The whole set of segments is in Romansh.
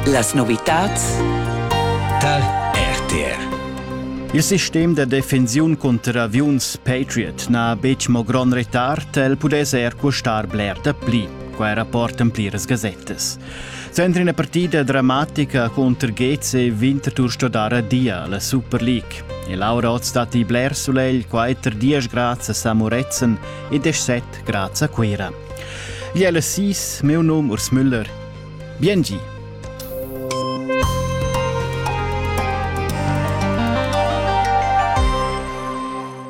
Las novitads tal RTR. Il sistem da defensiun cunter aviuns Patriot n'ha betg mo grond retard, el pudess er custar bler da pli, quai rapportan pliras gasettas. Center ina partida dramatica contro Geze Winterthur sto dar adia alla Super League. E Laura Oztati bler sulegl 4 10 grads a Samoretzen e 17 Graz a Cuira. Jelle Sis, meu nom Urs Müller. Biengi!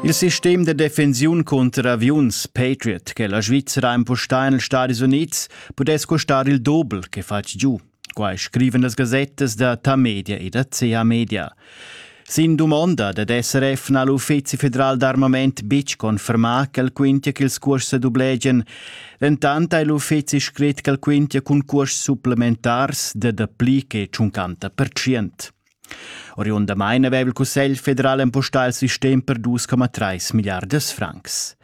Il sistem de defensiun contro aviuns Patriot che la Svizzera impostà negli Stati Uniti pudess costar il doppel che fatg giù. Quai scrivan las gasettas da Tamedia e da CH-Media. Sin dumonda dad SRF n'ha l'Uffizi federal d'armament betg confermà ch'el quintia ch'ils cuors sa dublegian. Dentant ha l'uffizi scrit ch'el quintia cun cuors supplementars da dapli che 50%. Oriundamain aveva il Cussegl federal empustà il sistem per 2,3 milliardas francs.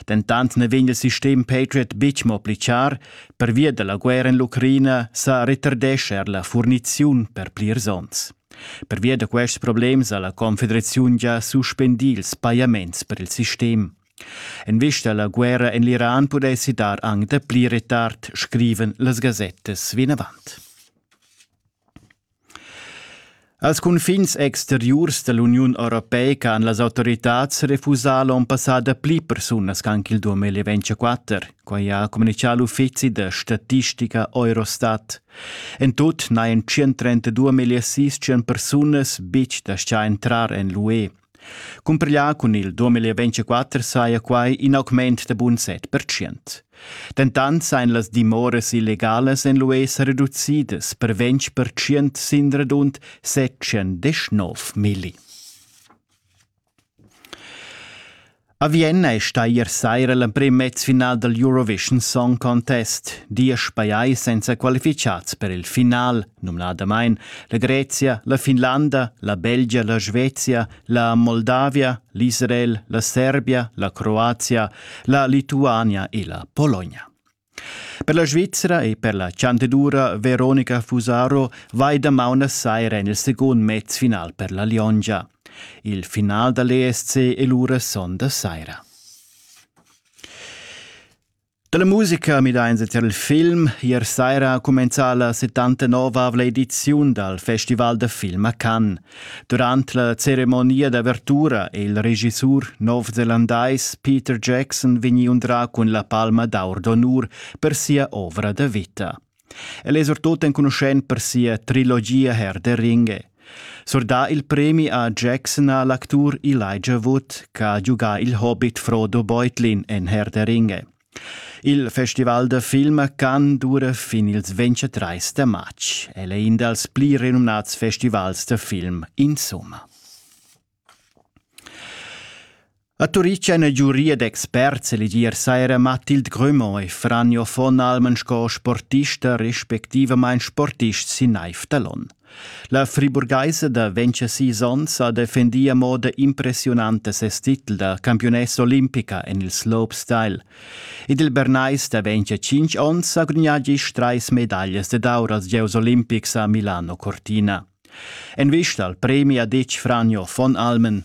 Dentant na vegn il sistem Patriot betg mo pli char, pervia da la guerra en l'Ucraina sa retardescha er la furniziun per plirs onns. Pervia da quests problems ha la Confederaziun gia suspendì ils pajaments per il sistem. En vista alla guerra en l'Iran pudessi dar anc da pli retard, scriven las gasettas vinavant. Als cunfins exteriurs dall'Uniun europeica han las autoritads refusà l'onn passà dapli persunas ch'anc il 2024. Quai ha communitgà l'uffizi da statistica Eurostat. En tut n'hajan 132.600 persunas betg dastgà entrar en l'UE. Cumpiglià cun il 2024 saja quai in augment da bun set pertschient. Dentant sajan las dimoras illegalas en l'UE sa reducidas per 20 pertschient sin radund 719 milli. A Vienna è stà ier saira l'emprim mezfinal dal Eurovision Song Contest, diesch pajais senza qualificads per il final, numnadamain la Grezia, la Finlanda, la Belgia, la Svezia, la Moldavia, l'Israel, la Serbia, la Croazia, la Lituania e la Pologna. Per la Svizra e per la chantenura Veronica Fusaro vai damaun a saira en il secund mezfinal per la Liongia. Il final da l'ESC è lura son da saira. Da la musica midains tier il film. Ier saira ha cumenzà la 79-avla ediziun dal Festival da film a Cannes. Durant la ceremonia d'avertura è il regissur novzelandais Peter Jackson vegnì undrà cun la palma d'aur d'onur per sia ovra da vita. El è surtut enconuschent per sia trilogia Herr der Ringe. Surdà il premi a Jackson ha l'actur Elijah Wood, che ha giugà il hobbit Frodo Beutlin en Herr der Ringe. Il festival da film can dura fin ils 23 da matg. El è in dals pli renumnads festivals da film insomma. A Turitg èn giuria d'experts elegier saira Mathilde Grumont e Franjo von Almen sco sportista respectivamain sportist sin naiv da l'onn. La friburgaisa da 26 onns ha defendì a moda impressiunanta ses titel da campiunessa olimpica en il slopestyle. Ed il Bernais da 25 onns ha gudagnà gist trais medaglias ed aur als gieus olimpics a Milano Cortina. En vista al premi ha ditg Franjo von Almen.